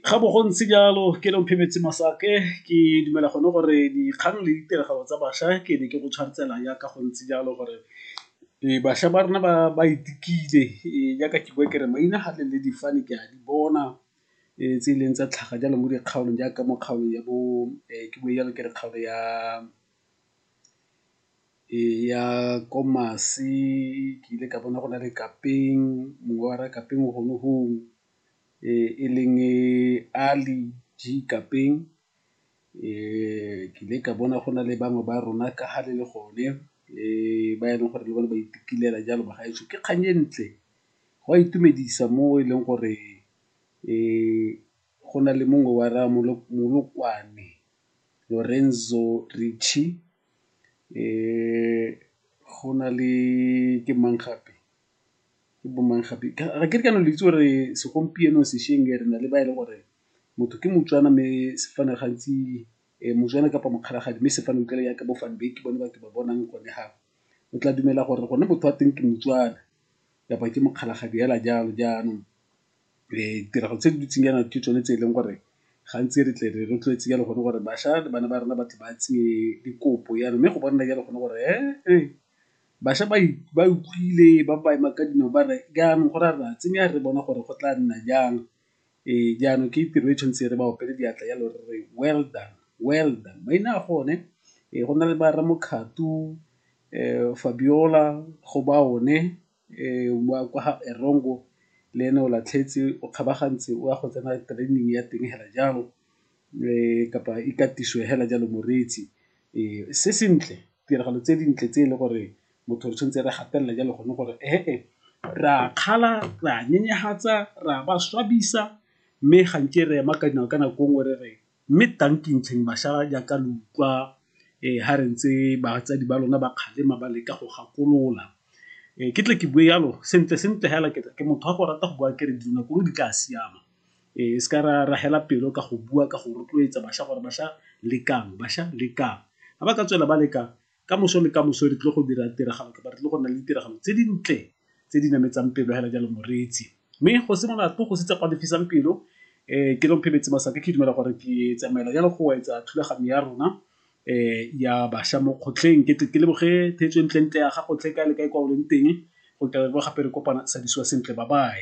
Ga bo go ntse jalo ke le Phemetse Masake ke dumela gone gore dikgang le ditiragalo tsa bašwa ke ne ke go tshwantsela jaaka go ntse jalo gore bašwa ba rona ba itukile jaaka ke bua kere maina ga le difane ke a di bona tse e leng tsa tlhaga jalo mo dikgaolong jaaka mo kgaolong ya bo ke bue jalo ke re kgaolo ya. Eya ko Masi ke ile ka bona go na le kapeng mongwe wa re kapeng o gone gong e leng Ali G kapeng. Ke ile ka bona go na le bangwe ba rona ka ha le le gone ba e leng gore le bone ba itumelela jalo ba gaetsho. Ke kgang e ntle go a itumedisa mo e leng gore go na le mongwe wa re Molokwane Lorenzo Ritchie. Go na le ke mang gape, ke bo mang gape ga ke re ke a le itse gore segompieno sešweng e re na le ba e leng gore motho ke moTswana mme sefane gantsi moTswana kapa mokgalajadi mme sefane utlwala yaka bo Van Wyk ke bone ba ke ba bonang gone fa. O tla dumela gore gone motho wa teng ke moTswana kapa ke mokgalajadi fela jalo jaanong. ditiragalo tse di ntseng jaana ke tsone tse e leng gore gantsi re tle re rotloetse jalo gone gore bašwa le bana ba rona ba tle ba tseye dikopo jalo. Mme go bona jalo gone gore bašwa ba utlwile ba ema ka dinao ba re jaanong go ra re a tsenya re bona gore go tla nna jang. Jaanong ke tiro e tshwantse re ba opele diatla jalo re re well done, well done. Maina a gone go na le ba Rra Mokgato, Fabiola go ba o ne. kwa ga Erongo le ene o latlhetse o kgabagantse o a go tsena training ya teng hela jalo kapa ikatiso hela jalo moreetsi. Se sentle tiragalo tse dintle tse e le gore motho re tshwanetse re gatelela jalo gone gore re a kgala, re a nyenyefatsa, re a ba swabisa mme ga nke re ema ka dinao ka nako nngwe re re Mme tankintlheng bašala jaaka lo utlwa ga re ntse batsadi ba lona ba kgalema ba leka go gakolola. Ke tle ke bue jalo sentle sentle fela ke ke motho wa go rata go bua ke re dilo gongwe di tla siama. Re seka ra ra fela pelo ka go bua ka go rotloetsa bašwa gore bašwa lekang, bašwa lekang. Ga ba ka tswela ba leka ka moso le ka moso re tlile go dira tiragalo kapa re tlile go nna le ditiragalo tse dintle tse di nametsang pelo hela jalo moreetsi mme go simolola tlo go sitse go lefisang pelo um ke long phebetse masaka ke dumela gore ke tsamaela jalo go etsa thulaganyo ya rona um ya bašwa mo kgotlheng ke ke leboge theetso e ntlentle ya ga gotlhe ka le kae kwa o leng teng go ka gape re kopana sa disiwa sentle ba bae